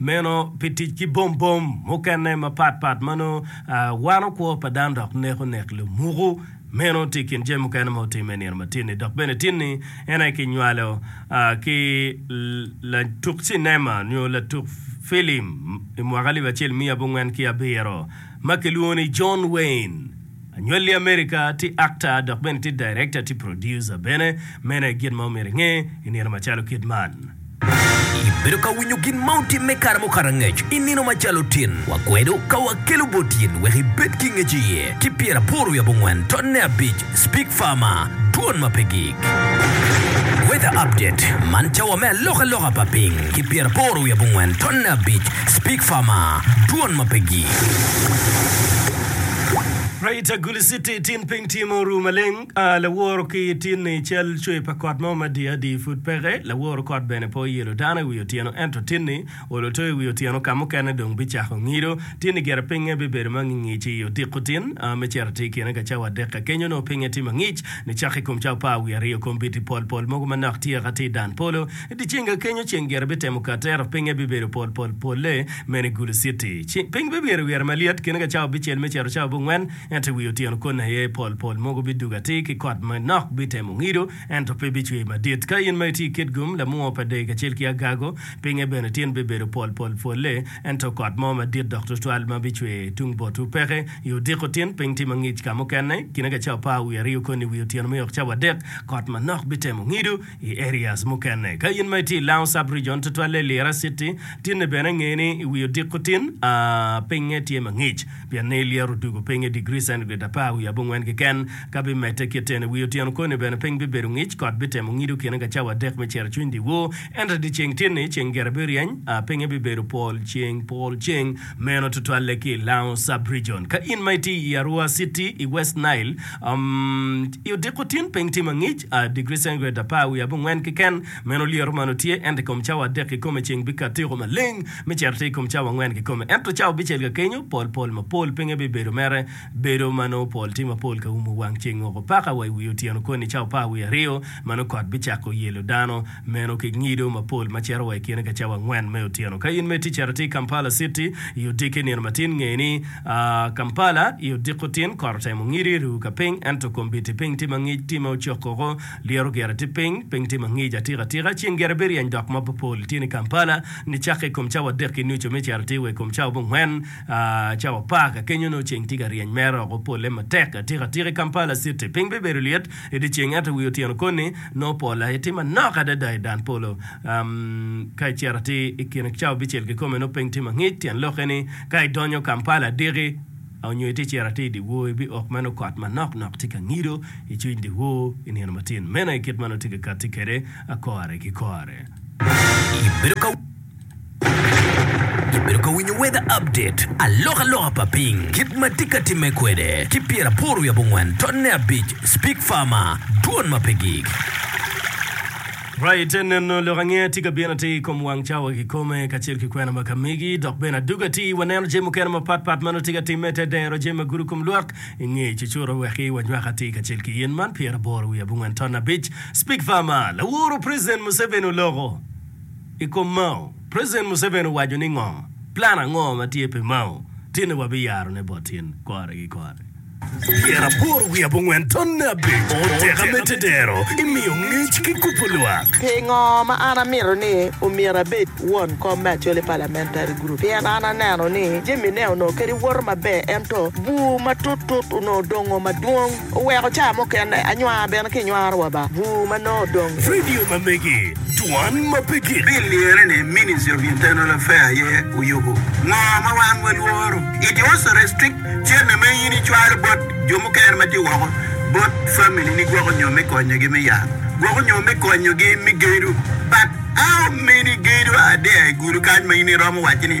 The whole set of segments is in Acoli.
Meno pi tic ki bombom mukene mapat pat ma nongo wano kwo pa dano dok neko nek lumuku. Meno tye i kin jami mukene ma otimme i nino ma tin-ni. Dok bene tin-ni en aye kinywalo ki latuk cinema nyo latuk filim i mwaka alip acel miya abongwen ki abiro ma kilwongo ni John Wayne. Anywali i Amerika, tye akta dok bene tye direkta, tye purodyuca bene. Mene gin ma omyero inge i nino macalo kit man. Ibedo ka winyo gin ma otimme kare mukato angec i nino macalo tin? Wakwedo ka wakelo bot in wek ibed ki ngec iye. Ki pyera aboro wiye abongwen dot ne abic, Speak Farmer, Dwon ma pe gik. Weather Update, Man cawa me alokaloka pa piny, ki pyera aboro wiye abongwen dot ne abic, Speak Farmer, Dwon ma pe gik. Rita Guliciti, Tin piny tye ma oru maleng. Laworo ki tin-ni i cal cwer pa kot mo ma diadi pud peke. Laworo kot bene pe oyelo dano i wi otyeno, ento tin-ni olo to i wi otyeno ka mukene dong bicako ngido. Tin-ni gire pingnge bibedo ma ngingic i odiko tin me cito atir kine ka cawa adek ka kenyo. Nongo pingnge tye mangic nicaka i kom cawa apar wiye aryo. Kombeddi pol pol mogo manok tye ka ti i dan polo. I dyeceng-ga kenyo ceng gire bitemo kater, pinye bibedo pol pol polle, mene gulu citi. Piny bimyero wire malyet, kine ka cawa bicel me cito cawa bungwen, ento i wi otyeno koni aye pol pol mogo bidugo atir ki kot ma nok bitemo ngido, ento pe bicwer madit. Ka in ma itye i Kitgum, lamwongo pa dee kacel ki agago, pinye bene tin bibedo pol pol polle, ento kot mo madit dok twatwal ma bicwer tung botwu peke. I odiko tin, piny tye mangic ka mukene, kine ka cawa apar wiye aryo koni i wi otyeno me yok cawa adek, kot manok bitemo ngido, I areas mukene, ka in ma itye i Lango Sub Region, tutwalle i Lira City, tinne bene nge ni i wi odiko tin, pinye tye ma ngic, pien ni Lira odugo piny i degree centigrade apar wiye abongwen keken. Ka bimedde kitten, i wi otyeno koni bene piny bibedo ngic, kot bitemo ngido kine ka cawa adek me cero-cwiny dyewor. Ento i dyeceng tin-ni, ceng gire biryeny, pinye bibedo pol ceng pol ceng. Meno tutwalle ki i Lango Sub Region. Ka in ma itye i Arua City, i West Nile, I odiko tin piny tye ma ngic, digri centigrade apar wiye abongwen keken. Meno lyeto man otye, ento i kom cawa adek kikome ceng bikat tyeko maleng me cito tir i kom cawa angwen kikome. Ento cawa bicel ka kenyo, pol pol mapol pinge bibedo mere bedo ma nongo pol tye mapol ka umo wang ceng woko paka wa i wi otyeno koni cawa apar wiye aryo ma nongo kot bicako yelo dano. Meno ki ngido mapol ma cito wa i kine ka cawa angwen me otyeno. Ka in me ticere tye i Kampala citi i odiki nino matin, ngey ni, Kampala i odiko tin, kot otemo ngidi, ru ka piny, ento kombiti piny tye mangic, time ocok koko, lyero gire tye piny, piny tye mangic atika atika, ceng gire biryeny dok mob pol tye ni Kampala ni cake i kom cawa adek ki nucu me cero tye wa i kom cawa abongwen, cawa apar ka kenyo nongo ceng tye ka ryeny mere oko, pole matek atika atika i Kampala citi, piny bibedo lyet, I dye ceng ento i wi otyeno koni nongo pol aye tye manok adada i dan polo. Ka icito atir i kin cawa abicel kikome nongo piny tye mangic, tyen lokke ni ka idonyo Kampala adiki nyo itye cito atir i dyewor, ibiok ma nongo kot manok nok tye ka ngido i cwiny dyewor i nino matin. Meno aye kit ma nongo tye ka katti kwede kore ki kore. Ibedo ka. Ibedo ka winyo weather update, alokaloka pa piny, kit ma tye ka timme kwede, ki pyeraboro wiye abongwen tonne abic Speak Farmer, Dwon ma pe gik. Raa ite neno lok ange tye ka bino atir i kom wang cawa kikome kacel ki kwena ma ka megi, dok bene adwogi atir waneno jami mukene mapat pat ma nongo tye ka timme te dero jami ma gudo kom lwak i nge cucuro weki wanywak atir kacel ki yen man pyeraboro wiye abongwen tonne abic Speak Farmer, Laworo President Museveni oloko. I kom Mao, President Museveni owaco ni ngo, plan ango ma tye pi Mao tinne wabiyaro ne bot in kore ki kore. Pyera aboro wiye abongwen tonne abic oteka me tedero imiyo ngec ki kubo lwak. Pingo ma an amito ni omyero abed won kom me Acholi Parliamentary Group? Pien an aneno ni jamine onongo kadi woto maber ento bur matut tut onongo dongo madwong. Oweko caa mukene anywaa bene ki nywaro wa ba bur ma nongo odong. Vidio ma megi, Dwan ma pe gik. Pi lirre ni Ministry of Internal Affair aye oyubu ngo ma wan wa lworo, it also restrict cene ma in i cwalo bot jo mukene ma tye woko bot family ni gwoko nyo me konyo gi me yat, gwoko nyo me konyo gi me gedo but how many gedo are there i gudo kany ma in i romo waci ni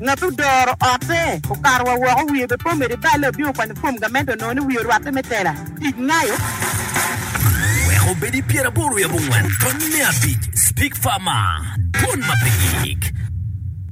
Ngat odoro otte okato wa woko wiye be pe omedo ibale obino kwanyo fom gamente onongo ni wiye orwatte me tela tic ngayo. Wek obed i pyeraboro i abongwen tony me abic, Speak Farmer, Dwon ma pe gik.